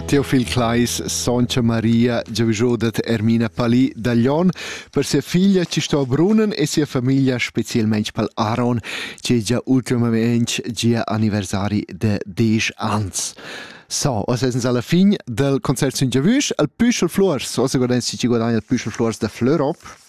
Teu figl Claes Soncia Maria giavischo dad Ermina Pali da Glion per sia figlia chi sto a Brunnen e sia famiglia specielmaing pal Aron chi è già ultimament gia anniversari de 10 ans. So, oz esens alla fin del concert sun giavüsch al Püschel Flors, oz guardain si chi guadagna il Püschel Flors da Flörop.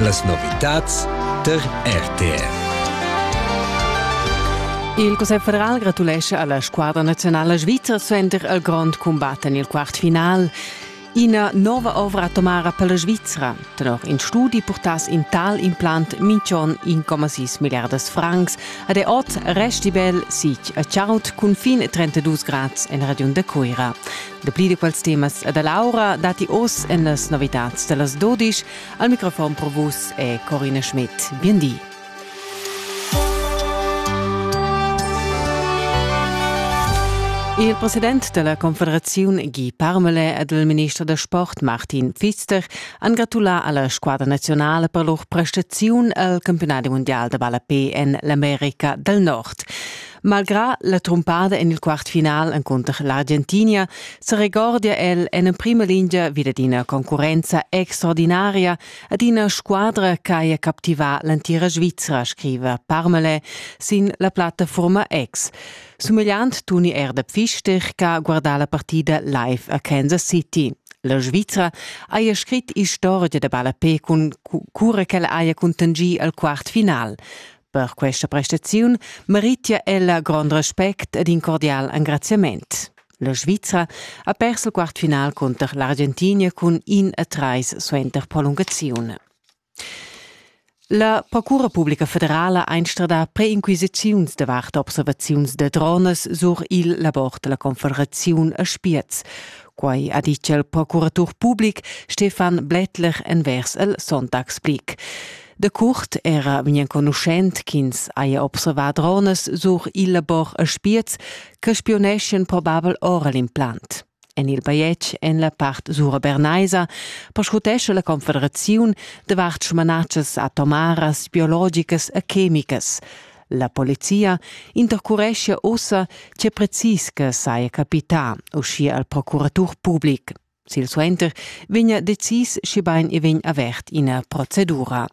Las novitads tar RTR. Il Cussegl federal gratulescha alla squadra nazionala svizra suenter il grond combat en il quartfinal. Ina nova ovra atomara per la Svizra. Tenor in studi portass in tal implant minch'on 1,6 milliardas francs. A de oz resti bel sic a Chaut cun fin 32 grads en Radiun de Cuira. Dapli da quels temas e da l'aura datti oz en las novitads da las dodisch. Al microfon pro vus è Corina Schmidt. Bien di. Il president della Confederazione Guy Parmele ed il minister da sport Martin Pfister han gratulà alla squadra nazionale per lur prestaziun al campionat mondial da ballapé en l'America del Nord. Malgrà la trumpada en il quart final encunter l'Argentinia se regordia el en emprima lingia vid ad ina concurrenza extraordinaria ad ina squadra ch'haja captivà l'entira Svizra, scriva Parmele sin la plattafurma X. Sumegliant tuni er da Pfister ch'ha guardà la partida live a Kansas City. La Svizra haja scrit istorgia da ballapè cun cura ch'ella haja cuntanschì al quart final. Per questa prestaziun meritia ella grond respect ed in cordial engraziament. La Svizra ha pers il quartfinal cunter l'Argentinia cun in e trais suenter prolungaziun. La Procura Publica Federala einstrada preinquisiziuns davart observaziuns de drones sur il labor della Confederaziun a Spiez. Quai ha ditg il procuratur public Stefan Blättler envers el Sonntagsblick. De curt era vegn enconuschent ch'ins haja observà drones sur il labor a Spiez che spioneschien probabel ora l'implant. En il bajetg en la part sura bernaisa perscrutescha la Confederaziun davart smanatschas atomaras, biologicas e chemicas. La polizia intercureschia ussa tge precis che saja capità, uschia al procuratur public. Silsuenter vegna decis schibein e vegn avert ina procedura.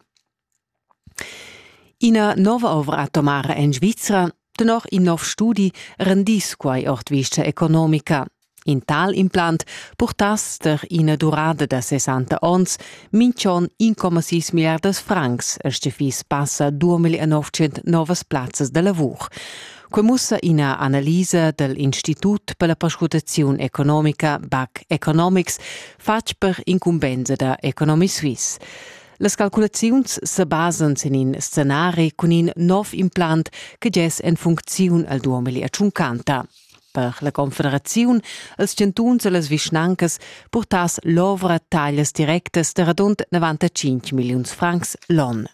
Ina nova ovra atomara en Svizra, tenor in nov studi, rendis quai ord vista economica. In tal implant purtass der ina durada da 60 ons minchon 1,6 milliardas francs, er fiss passa 2.900 novas plazzas da lavur. Quei mussa ina analisa dell Institut per la perscrutaziun economica BAC Economics fatg per incumbensa da Economy Suisse. Las calculaziuns se basan sin in scenari cun in nov implant che gess en funcziun al 2050. Per la Confederaziun, els chantuns e las vischnancas purtass l'ovra taglias directas da radund 95 milliuns francs l'on.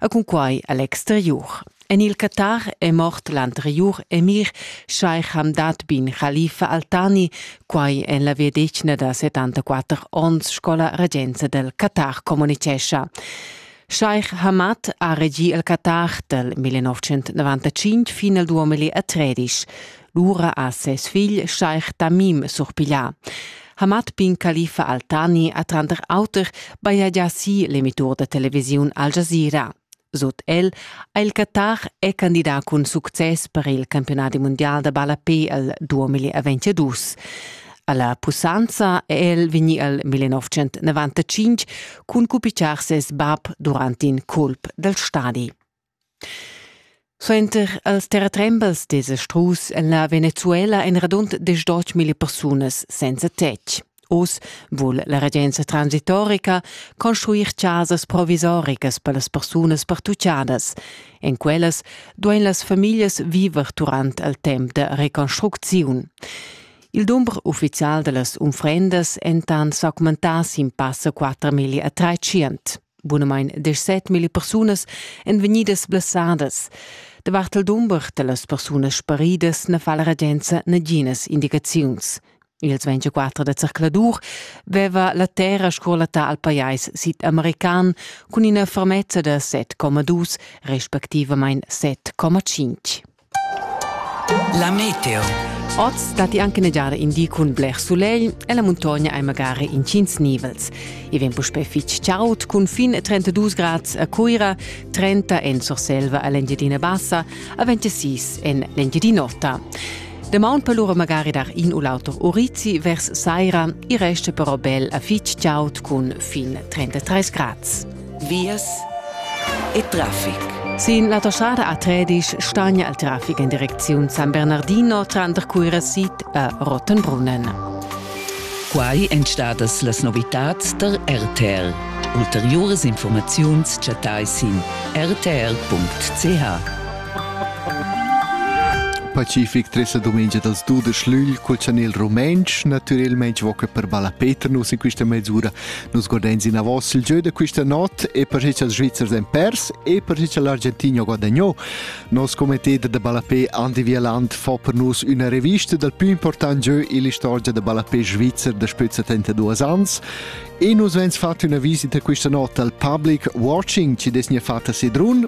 E cunquai a l'exteriur. En il Qatar è mort l'anteriur emir Sheikh Hamdad bin Khalifa Altani, quai en la vegliadetgna da 74 onns, sco la regenza del Qatar communitgescha. Sheikh Hamad ha regì il Qatar dal 1995 fin al 2013. Lura ha ses figl Scheich Tamim surpiglià. Hamad bin Khalifa Al-Thani ha tranter auter bajagià si l'emittur da televisiun Al Jazeera. Sut el ha il Qatar è candidà cun success per il campionadi mundial da ballapé al 2022. Alla pussanza è el vegni al 1995 cun cupitschar ses bab durant in culp dal stadi. Suenter els terratrembels desa strus en la Venezuela ein radund diesch milli persunas senza tetg. Oz vul la regenza transitorica construir casas provisoricas per las persunas pertuccadas. En quellas duein las famiglias viver durant il temps de reconstrucziun. Il dumber ufficial da las unfrendas entan s'augmentar sin passa 4 milli a 300. Bunamain 17.000 persunas èn vegnidas blessadas. Davart il dumber da las persunas sparidas na fa la regenza naginas indicaziuns. Ils 24 da zercladur veva la terra scolata al pajais sid-american cun ina fermezza da 7,2 respectivamain 7,5. La meteo. Oz datti anche negiare in di cun bler sulegl e la muntogna è magari intgins nivels. I vegn puspè fitg chaud cun fin 32 grads a Cuira, 30 en Surselva a l'Engiadina Bassa, a 26 en l'Engiadin'Ota. Damaun per lura magari dar in u l'auter urizi vers saira, il resto però bel a fitg chaud cun fin 33 grads. vias e traffic. Sin l'autostrada A13 stagna il traffic in direcziun San Bernardino tranter Cuirasit e Rottenbrunnen. Quai èn stadas las novitads tar RTL. Ulteriuras informaziuns chattai sin rtl.ch. Pacific tres la dumengia dals du de schlügl col chanel rumentsch, natürelmaing voca per balla Peter nus in quista mezz'ura Nus guardains inavos il gieu da quista not e per chi cha'ls Svizzers han pers e per chi cha l'Argentina ha guadagnò. Nos comiteter da ballapé Andy Wieland fa per nus üna revista dal più important gieu ill'istorgia da ballapé svizzer da spö 72 ans e nus vegns fat üna visita quista not al public watching chi dess gnir fat a Sedrun